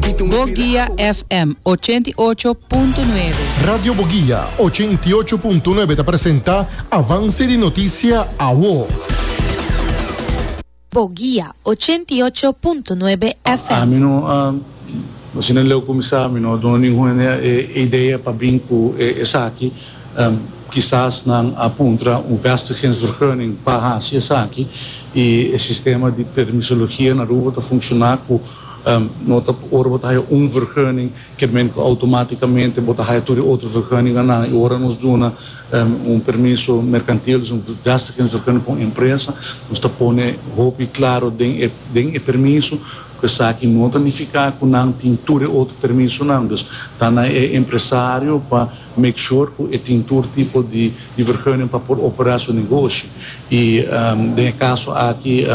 Boguia FM ochenta i ocho punto nuebe. Radio Boguia ochenta i ocho punto nuebe ta presenta Avance di Noticia Awo. Boguia ochenta i ocho punto nuebe FM. Mi no a Asina leu cuminsa mi no a duna ningun e idea pa bin cu e esaki. Kisas nan a puntra un vestigingsvergunning pa haci esaki y e sistema di permisologia na Aruba ta funciona cu. No ta pa ora bo ta haya un vergunning ke men ku outomaticamente bo ta haya tur e otro vergunninga nan i ora nos duna un permiso mercantil dus un vestigingsvergunning pa un empresa nos ta pone hopi claro den e den e permiso ku esaki no ta nifica ku nan tin tur e otro permisonan dus ta na e empresario pa Make sure cu e tin tur tipo di di vergunning pa por opera su negoshi. Y den e caso aki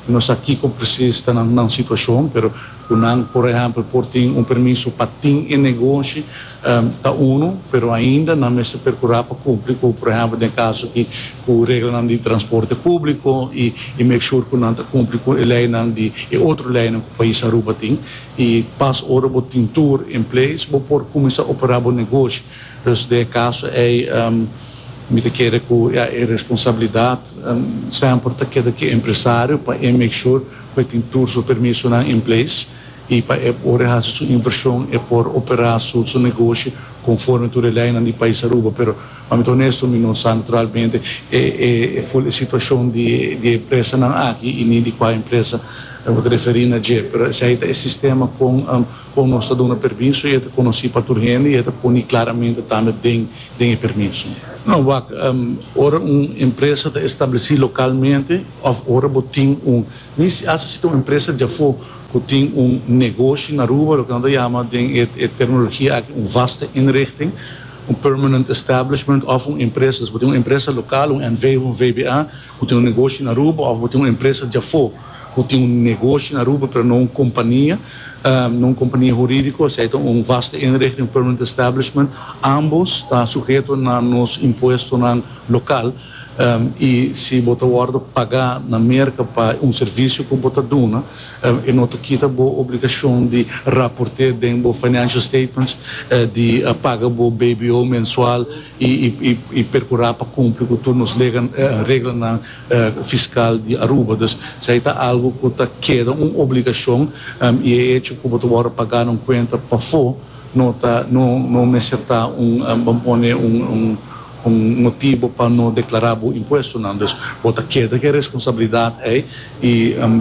no sa kico precies ta nan nan situacion, pero cu nan por ehempel por tin un permiso pa tin e negoshi ta uno, pero ainda nan mester percura pa cumpli cu por ehempel den e caso aki cu reglanan di transporte publico y make sure cu nan ta cumpli cu e leynan di e otro leynan cu pais Aruba tin. I pas ora bo tin tur en place bo por cuminsa opera bo negoshi. Dus den e caso ey mi ta kere cu ya e responsabilidad semper ta keda cu e empresario pa e make sure cu e tin tur su permisonan en place y pa e ora e haci su inversion e por opera su negoshi conforme tur e leynan di pais Aruba pero Pami ta onesto mi no sa naturalmente e ful e situacion di e empresanan aki y ni di cua empresa bo ta referi na dje, pero esai ta e sistema con con nos ta duna permiso y e ta conoci pa tur hende y e ta poni claramente tambe den den e permiso. No, wak, ora un empresa ta estableci localmente of ora bo tin un, ni si asta si ta un empresa di afo cu tin un negoshi na Aruba, loke nan ta yama den e terminologia aki un vaste inrichting, Un permanent establishment òf un empresa. Si bo tin un empresa lokal, un NV òf un VBA, ku tin un negoshi na Aruba òf bo tin un empresa dja afó ku tin un negoshi na Aruba pero no un kompania, no un kompania hurídiko, esei ta un vaste inrichting, un permanent establishment. Ambos ta suheto na nos impuestonan lokal i si bo ta wòrdu pagá na Merka pa un servisio ku bo ta duna, E no ta kita bo obligashon di raporté den bo financial statements di paga bo BBO mensual i perkurá pa kumpli ku tur nos reglanan fiskal di Aruba. Dus esei ta algu ku ta keda un obligashon i e hecho ku bo ta wòrdu pagá na un kuenta pafó, No ta no no mester ta un bo pone un un un motibo pa no deklará bo impuestonan dus bo ta keda ku e responsabilidat ei i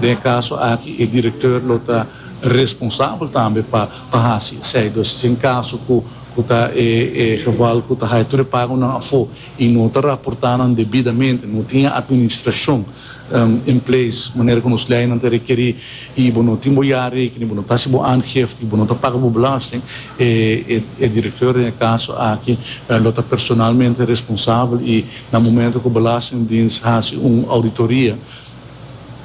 den e kaso aki e direkteur lo ta responsabel tambe pa pa hasi esei dus si en kaso ku ku ta e e geval ku ta haya tur e pagonan afó i no ta raportá nan debidamente no tin e atministrashon en place manera ku nos leinan ta rekerí i bo no tin bo ya rekening, bo no ta hasi bo aangifte i bo no ta paga bo belasting, e direkteur den e kaso aki lo ta personalmente responsabel i na momento ku Belastingdiens hasi un ouditoria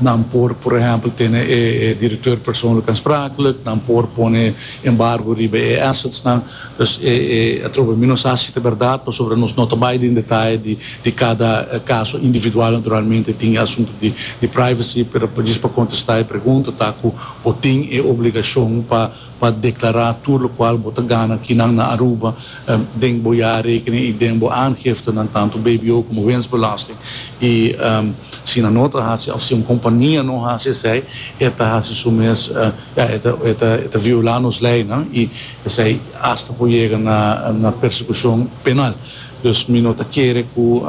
nan por por ehèmpel tene e direkteur persoonlijk aansprakelijk, nan por pone embargo riba e assetsnan. Pues e atrobe mi nos hasi ta berdad, pasobra nos no ta bai den detaye di cada caso individual, naturalmente tin e asunto di privacy, pero pa djis pa contesta e pregunta ta cu bo tin e obligacion pa declara tur locual bo ta gana aki nan na Aruba den bo jaarrekening y den bo aangiftenan, tanto bbo como winstbelasting, y si nan no ta hasi of si un compania no hasi esey e ta hasi su mes, ja e ta viola nos leynan y Esei hasta por yega na persecucion penal. Dus mi no ta kere cu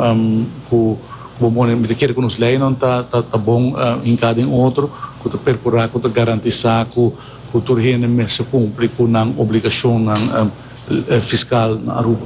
cu bo mone, mi ta kere cu nos leynan ta ta bon hinca den otro, cu ta percura cu ta garantisa cu cu tur hende mester cumpli cu nan obligacionnan fiscal na Aruba.